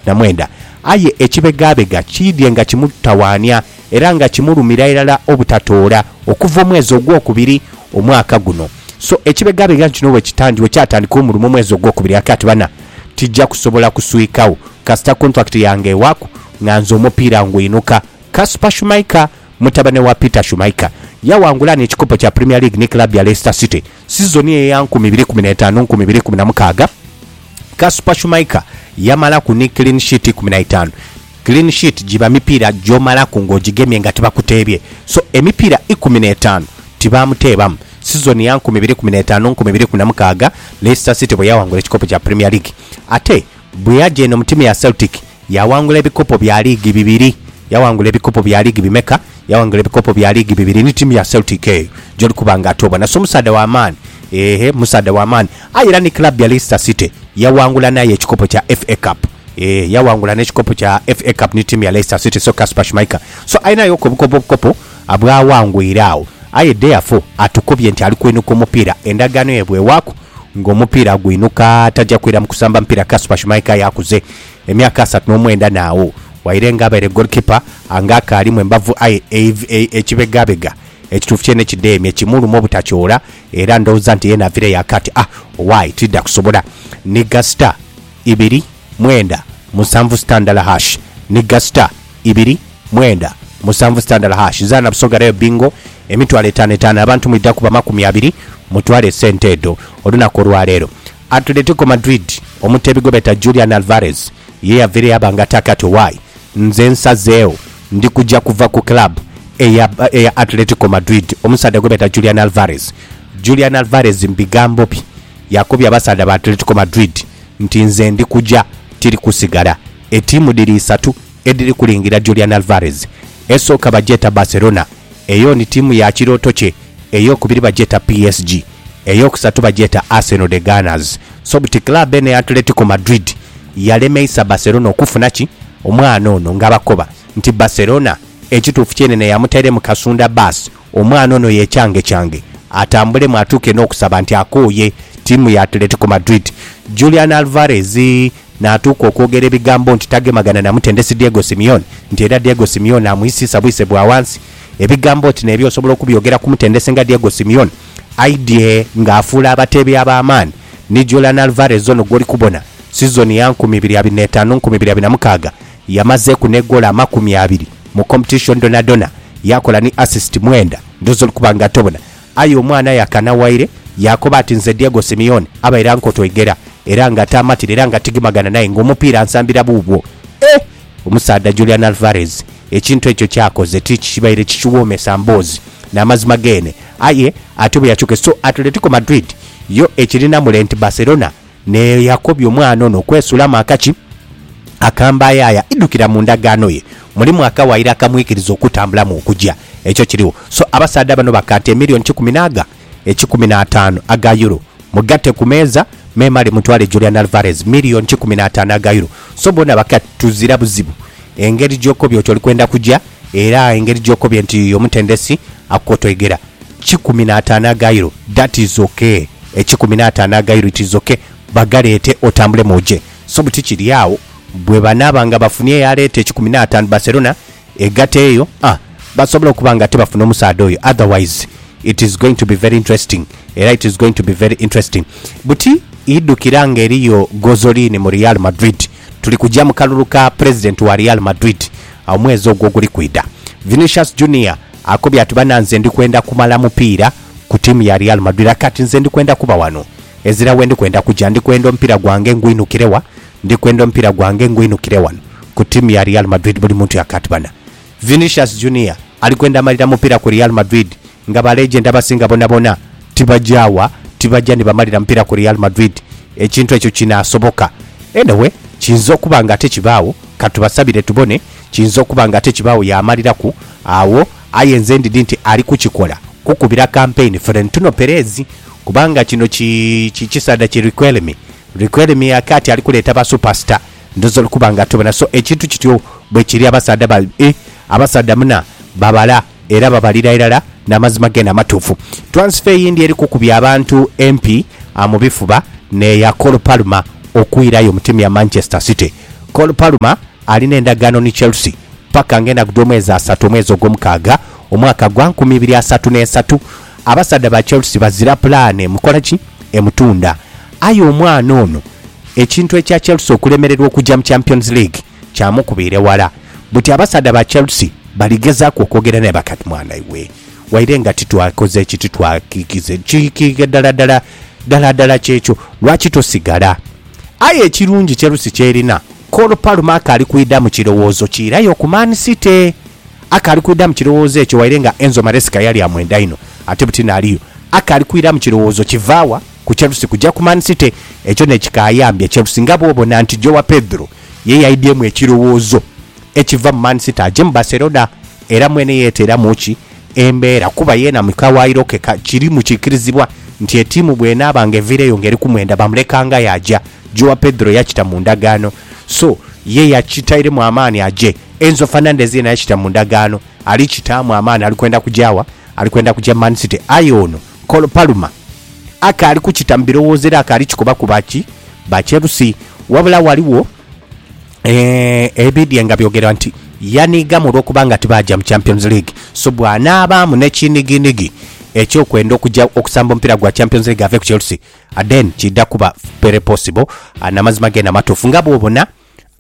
Na mwenda. Aye ekibegabega kiidhie nga kimutawaania era nga kimulumira irala obutatoola okuva omwezi ogwokubiri omwaka guno. So ekibegabega nkino bwekitandika, bwekyatandika omulimo omwezi ogwokubiri aka ati bana tija kusobola kuswikagho kasita contract yange ewaku nga nze omupiira ngwinuka. Kasper Schmeicher, mutabane wa Peter Schmeicher, yawangula n'ekikopo kya Premier League ni club ya Leicester City. Sizoni eya nkumi ibiri kumi n'etaanu nkumi ibiri kumi na mukaaga, Kasper Schmeichel yamalaku ni clean sheet ikumi na itaanu. Clean sheet giba mipiira gy'omalaku ng'ogigemye nga tibakuteebye. So, emipiira ikumi n'etaanu tibaamuteebamu. Sizoni ya nkumi ibiri kumi n'etaanu nkumi ibiri kumi na mukaaga, Leicester City bwe yaawangula ekikopo kya Premier League. Ate. Bwe yaja eno mu tiimu ya Celtic, yaghangula ebikopo bya liigi bibiri. Yaghangula ebikopo bya liigi bimeka? Yaghangula ebikopo bya liigi bibiri ni tiimu ya Celtic eyo gy'oli kuba nga ate obona. So musaadha wa maani. Eehhe, musaadha wa maani. Aye era ni club ya Leicester City yaghangula n'aye ekikopo kya FA Cup. Eehh, yaghangula n'ekikopo kya FA Cup ni tiimu ya Leicester City. So Kasper Schmeichel, so alinaghoku obukopo obukopo bw'aghangwire agho. Aye dheafo atukubye nti ali kwenuka omupiira, endagaano ye bw'ewaaku. ng'omupiira agwinuka taja kwira mu kusamba mupiira Kaspa Shumaika aye akuze emyaka asatu n'omwenda naagho waire nga abaire goalkeeper ange akaalimu embavu aye ekibegabega ekituufu kyene kidheemye kimuluma obutakyoola era ndhooza nti yena avireyo akati ah owaye tidha kusobola ni gasita ibiri mwenda, musanvu sita ndala hash ni gasita ibiri, mwenda, musanvu sita ndala hash zaana Busoga Rail Bingo emitwalo etaano etaano abantu mwidha kuba makumi abiri mutwale esente edho olunaku olwaleero Atletico Madrid omuteebi gwebeeta Julian Alvarez ye yaveere yaba nga ataaka ati Owaye nze nsazeegho ndi kuja kuva ku club eya eya Atletico Madrid omusaadha gwebeeta Julian Alvarez Julian Alvarez mu bigambo bye yakobye abasaadha ba Atletico Madrid nti nze ndi kuja tiri kusigala. Etiimu dhiri isatu edhiri kulingira Julian Alvarez. Esooka bagyeta Barcelona, eyo ni tiimu ya kirooto kye, ey'okubiri bagyeta PSG, ey'okusatu bagyeta Arsenal The Gunners. So buti club eno eya Atletico Madrid yalemeisa Barcelona okufuna ki? Omwana ono nga bakoba nti Barcelona ekituufu kyenene yamutairemu kasunda baasi Omwana ono yecangechange atambulemu atuuke n'okusaba nti akooye ttiimu ya Atletico Madrid, Julian Alvarez n'atuuka okwogera ebigambo nti tagemagana na mutendesi Diego Simeone nti era Diego Simeone amwisiisa bwise bwa wansi. Ebigambo oti n'ebyo osobola okubyogera ku mutendesi nga Diego Simeone? Aidye ng'afuula abateebi ab'amaani ni Julian Alvarez ono gw'oli kubona sizoni ya nkumi ibiri abiri n'etaanu nkumi ibiri abiri na mukaaga Yamazeku ne goolo amakumi abiri mu competition dhonadhona yakola ni assist mwenda ndhowoza oli kuba nga tobona aye omwana aye akanawaire yakoba ati nze Diego Simeone abaire ankota oigera era nga taamatira era nga tigimagana naye nga omupiira ansambira buubwo eh omusaadha Julian Alvarez ekintu ekyo kyakoze tikibaire kikiwoomesa mboozi namazima geene aye ate bweyakyuke so Atletico Madrid yo ekirina mule nti Barcelona Nae yakobya omwana ono okwesulamu akaki akambayaaya, idhukira mu ndagaano ye mulimu akawaire akamwikiriza okutambulamu okuja. Ekyo kirigho. So, abasaadha bano bakaata emillion kikumi n'aga ekikumi n'ataanu aga Euro. Mugatte ku meeza, memale mutwale Julian Alvarez, million kikumi n'ataanu aga Euro. So, boona bakati, tuzira buzibu. Engeri gy'okobye oti oli kwenda kuja, era engeri gy'okobye nti omutendesi akukotoigera kikumi n'ataano aga Euro, that is ok. Ekikumi n'ataano aga Euro it is ok. Bagaleete otambulemu oje. So buti kiri agho, bwebanaaba nga bafunye eyaleeta ekikumi n'ataano, Barcelona egate eyo, a basobola okuba nga ate bafuna omusaadha oyo. Otherwise, it is going to be very interesting, era it is going to be very interesting. Buti idhukira nga eriyo Gozolini mu Real Madrid. Tuli kuja mu kalulu ka pulezidenti wa Real Madrid omwezi ogwo oguli kwidha. Vinicius Junior akobye ati, Bana nze ndi kwenda kumala mupiira ku ttiimu ya Real Madrid aye kati nze ndi kwenda kuba wano ezira wendi kwenda kuja. Ndi kwenda omupiira gwange ngwinhukire wa? Ndi kwenda omupiira gwange ngwinhukire wano ku ttiimu ya Real Madrid, buli muntu yaka ati, Bana. Vinicius Junior ali kwenda malira mupiira ku Real Madrid nga ba legend abasinga bonabona tibagya wa, tibagya ni bamalira mupiira ku Real Madrid. Ekintu ekyo kinaasoboka? Anyway, kiyinza okuba nga ate kibaagho, ka tubasabire tubone, kiyinza okuba nga ate kibaagho yaamaliraku agho. Aye nze ndidhi nti ali kukikola kukubira kampeyini Florentino Perez kubanga kino ki, ki kisaadha ki Riquelme. Riquelme akaati ali kuleeta ba superstar, ndhooza oli kuba nga tobona. So ekintu kityo bwekiri, abasaadha ba, eh, abasaadha muna babala. era babalira irala n'amazima gene amatuufu. Twansifa eyindi eri kukubya abantu empi mu bifuba n'eya Cole Palmer okwirayo mu tiimu ya Manchester City. Cole Palmer ali n'endagaano ni Chelsea paka ng'enaku dh'omwezi asatu omwezi ogwomukaaga omwaka gwa nkumi ibiri asatu n'esatu. Abasaadha ba Chelsea bazira pulaani emukola ki? Emutunda. Aye omwana ono ekintu ekya Chelsea okulemererwa okugya mu Champions League, kyamukubira eghala buti abasaadha ba Chelsea baligezaaku okwogera naye bakati mwana iwe waire nga titwakoze ki titwakikize ki ki dala dala dala dala kyekyo lwaki tosigala aye ekirungi Chelsea kyerina Cole Palmer akaali kwidha mu kirowoozo ki irayo ku Man City akaali kwidha mu kirowoozo ekyo waire nga Enzo Maresca yali amwenda inho ate buti n'aliyo akaali kwidha mu kirowoozo kivaawa ku Chelsea kuja ku Man City, ekyo ne kikaayambya Chelsea nga bwobona nti Joao Pedro ye yaidhyemu ekirowoozo ekiva mu Man City aje mu Barcelona era mwene yeteeramu ki embeera kuba yeena mu kawaayiro ke ka kirimu kiikirizibwa nti etiimu bw'enaaba nga eviireyo nga eri kumwenda bamuleka nga yaaja. Joao Pedro yakita mu ndagaano so ye yakitairemu amaani aje. Enzo Fernandez yeena yakita mu ndagaano ali kitaamu amaani ali kwenda kugya wa? Ali kwenda kugya Man City aye ono Col Palmer akaali kukita mu birowoozo era akaali kikobaku ba ki? Ba kyerusi. Wabula ghaligho eeh, ebidhie nga byogerwa nti yaniigamu olw'okuba nga tibaaja mu Champions League. So bw'anaabaamu n'ekiinigiinigi eky'okwenda okuja okusamba omupiira gwa Champions League ave ku Chelsea, then kiidha kuba very possible. Aa, n'amazima geene amatuufu nga bw'obona.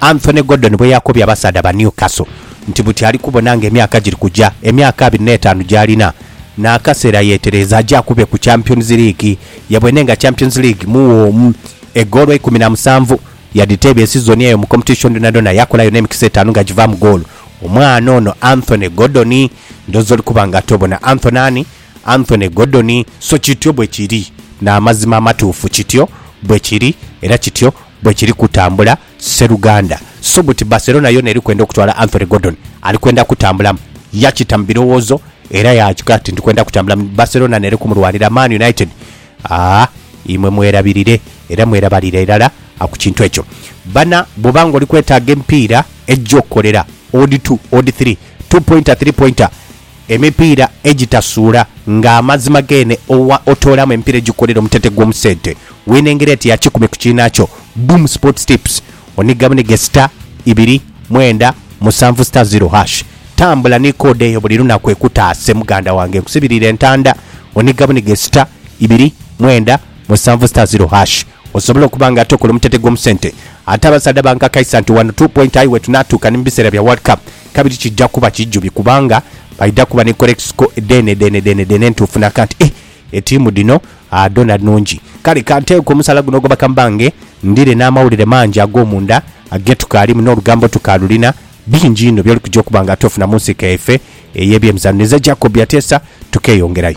Anthony Gordon bweyakobye abasaadha ba Newcastle nti buti ali kubona nga emyaka giri kuja, emyaka abiri n'etaanu gy'alina n'akaseera yeetereeza aje akube ku Champions League. Yabwene nga Champions League muwoomu, eggoolo eikumi na musanvu yadhiteebya esizoni eyo mu Competition dhonadhona yakolayo n'emikisa etaanu nga givaamu ggoolo. Omwana ono Anthony Gordon ndhoozi oli kuba nga tobona. Anthony ani? Anthony Gordon, So kityo bwe kiri. N'amazima amatuufu, kityo bwe kiri, era kityo bwe kiri kutambula, sseruganda. So buti Barcelona yoona eri kwenda okutwala Anthony Gordon. Ali kwenda kutambulamu. Yakita mu birowoozo era yaakikola ati, Ndi kwenda kutambulamu. Barcelona n'eri kumulwanira. Man United, aa, imwe mwerabirire era mwerabalire irala ku kintu ekyo. Bana, bw'oba ng'oli kwetaaga emipiira egy'okukolera, odd two, odd three, two pointer, three pointer, Emipiira egitasuula nga amazima geene owa otoolamu emipiira egikukolera omutete gw'omu sente w'enengera eti ya kikumi ku kiinaakyo Boom Sports Tips oniga bunige star ibiri mwenda musanvu star zero hash tambula ni koode eyo buli lunaku ekutaase muganda wange nkusibiriire entanda oniga bunige star ibiri mwenda musanvu star zero hash osobole okuba nga ate okola omutete gw'omu sente ate abasaadha bankakaisa nti wano two point aye wetunaatuuka ni mu biseera bya World Cup kabiri kija kuba kijubi kubanga baidha kuba ni korekisiko dheenedheenedheenedheene entuufu na ka nti, Ih, etiimu dhino dhoona nnungi. Kale ka nteeko omusaala guno ogw'amaka mbange ndhire n'amawulire mangi ag'omunda ge tukaalimu n'olugambo tukaalulina. Bingi inho by'olikuja okuba nga tuufuna mu nsika yaife ey'ebyemizaano. Nze Jacob Ateesa, tukeeyongerayo.